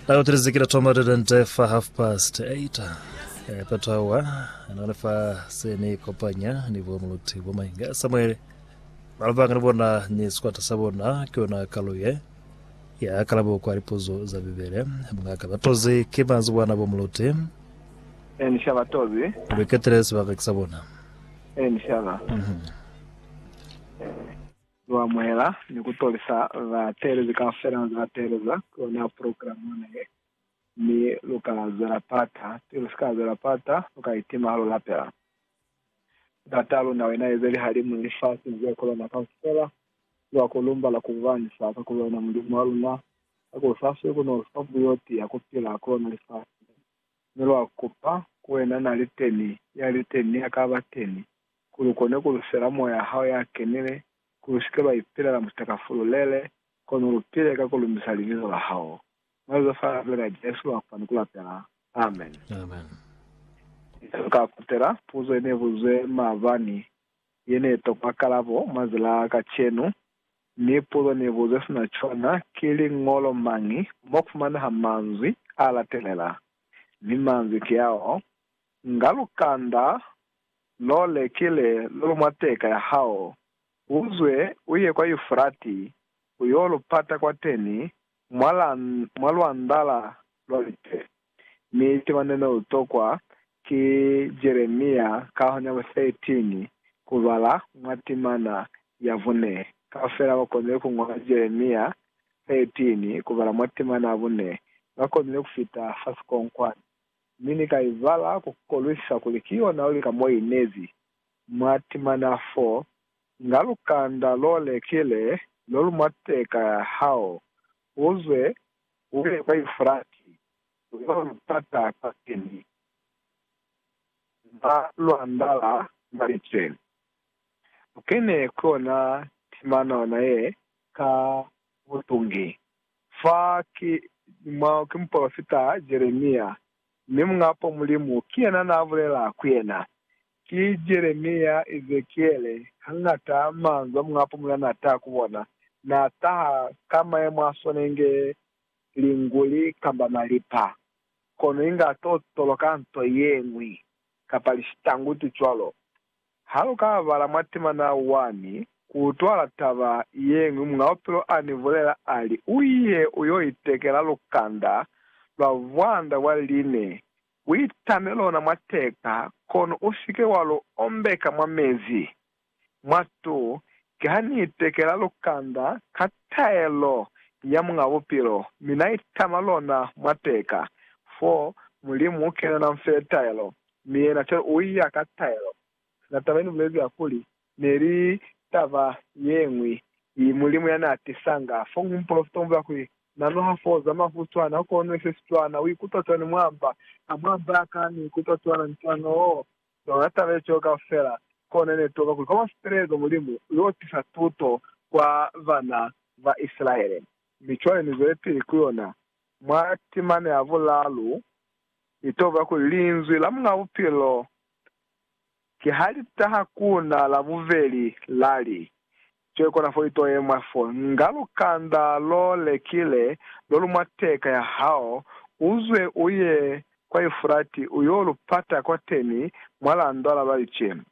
Ayo tilezi kila thoma tete fa half past eight. Eh, peto awa none fa se ni kopanya ni bo muluti bo mainga Samuel balabanga ni bona ni sikwata sa bona ke yona kaluye ya kalabo kwa lipuzo za bibele mungaka batozi ke manzi bwana bo muluti Eh, ni shaba tozi. luketele sebaka ke sa bona Eh, ni shaba. Mhm. Lu amuhela ni ku tolisa bateelezi kaufela ba ze ba teeleza ki ona programa ona ye, mi lu ka zwela pata. Pili lu si ka zwela pata, lu ka itima ha lu lapela. Ndat'a luna, wena ye ze lihalimu ni lifasi ni ze kolona kaufela, lwa ku lumbala ku bubanisa ka kuli wena Mulimu wa luna, ka kuli u sa siwi ku n'o lu fa buyo ti ya ku pila ku lona lifasi. Mi lwa kupa ku wena, Na li teni, ya li teni, ya ka ba teni. ku lu kone ku lusela Moya hao ya Kenile, ku lu si ke lwa ipilela mutaka fululele, kono lu pile ka ku lumbisa Libizo la hao. Mwa lizo fa Lipeli la Jesu lwa fani ku lapela. Amen. Inge lu ka kutela puzo ye ne buzwe maabani, ye ne tokwa kalabo mwa ze la kacenu, mi puzo ne buzwe sina cwana ki, Liñolo mañi mo fumaneha manzwi a latelela? Mi manzwi ki ao, Nga lu kanda Lo lekile lulu mwa teka ya hao, u zwe u ye kwa Yufrati, u yo lu pata kwateni mwa la, mwa lwandala lwa lite. Mi tema ne ne u tokwa ki Jeremia kaho nya bo 13 ku bala mwa timana ya bune. Kaufela ba konile ku ñola Jeremia 13 ku bala mwa timana ya bune, ba konile ku fita fa sikonkwani. mi Ni ka ibala ku kolwisa kuli ki yona luli ka mo i nezi. Mwa timana fo, nga lukanda lo lekile lo lu mwa teka ya hao, u zwe u ye kwa Yufrati, u yo lu pata kwa pili, mwa lwandala mwa liceni, u kene ku yona timana ona ye ka butungi. Fa ki mupolofita Jeremia, mi Muñ'a-po Mulimu ki yena n'a bulela ku yena. Ki Jeremia, Ezekiele, hañata manzwi a Muñ'a-po Mulimu n'a taha ku bona, n'a taha ka mayemo a swana inge linguli kamba malipa, kono inge a t'o toloka nto ye ñwi, kapa lishita-ngutu cwalo. Ha lu ka bala mwa temana wani, ku utwala taba yeñwi Muñ'a Bupilo a ni bulela a li, U ye u yo itekela lukanda lwa vwanda bwa line, u itame lona mwa teka, kono u si ke wa lu ombeka mwa mezi. Mwatu, ki ha ni itekela lukanda ka taelo ya Muñ'a Bupilo, mi na itama lona mwa teka, fo Mulimu u kenela nfe taelo, Mi yena cwalo u iya ka taelo. Na taba ye ni bulezi ya kuli, Ne li taba yeñwi i Mulimu ya na tisanga. Fo mu mupolofita u bulela kuli, Na noha foo za mafu cwana, u konwe sesi cwana, u ikutwa cwani mwa mba? Ha mwa mba ya ka, ni ikutwa cwana ni cwana. Oh, yona taba ye cwalo kaufela! Kona ne toka kuli kwa mwa sipelezo Mulimu u yo tisa tuto kwa bana ba Isilaele. Mi cwale ni zwelipili ku yona mwa timana ya bulalu Ni toba kuli Linzwi la Muñ'a Bupilo ki ha li taha ku na la bubeli, la li, Cwe kona fo ito ye mwa fo, nga lukanda lo lekile lo lu mwa teka ya hao, u zwe u ye kwa Yufurati u yo lu pata kwateni mwa landwa la balicemu.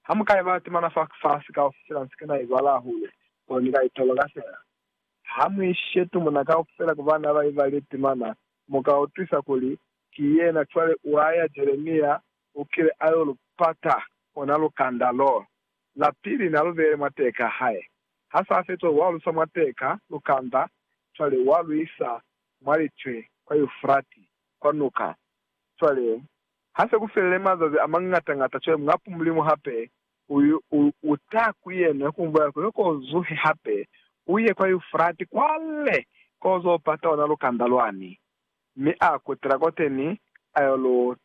Ha mu ka ibala temana fa fasi kaufela, nsi kana ibala hahulu, kono ni ka itoba ka sina. Ha mu ishe tumuna kaufela ku bana ba ibalile temana, Mu ka utwisa kuli ki yena. Cwale wa ya, Jeremia u kile a yo lu pata ona lukanda lo la pili na lu beele mwa teka hae. Ha sa fetwa, wa lu sa mwa teka lukanda, cwale wa lu isa mwa litwe kwa Eufrati, kwa nuka. Cwale ha se ku felile mazazi a mañata-ñata, cwale Muñapu Mulimu hape Uye, u, u ta ku yena, yo ku mbo yako, yo ko zuhe hape, u ye kwa Yufrati kwale, ko zo pata ona lukanda lwani, mi a kutela koteni, a yo lu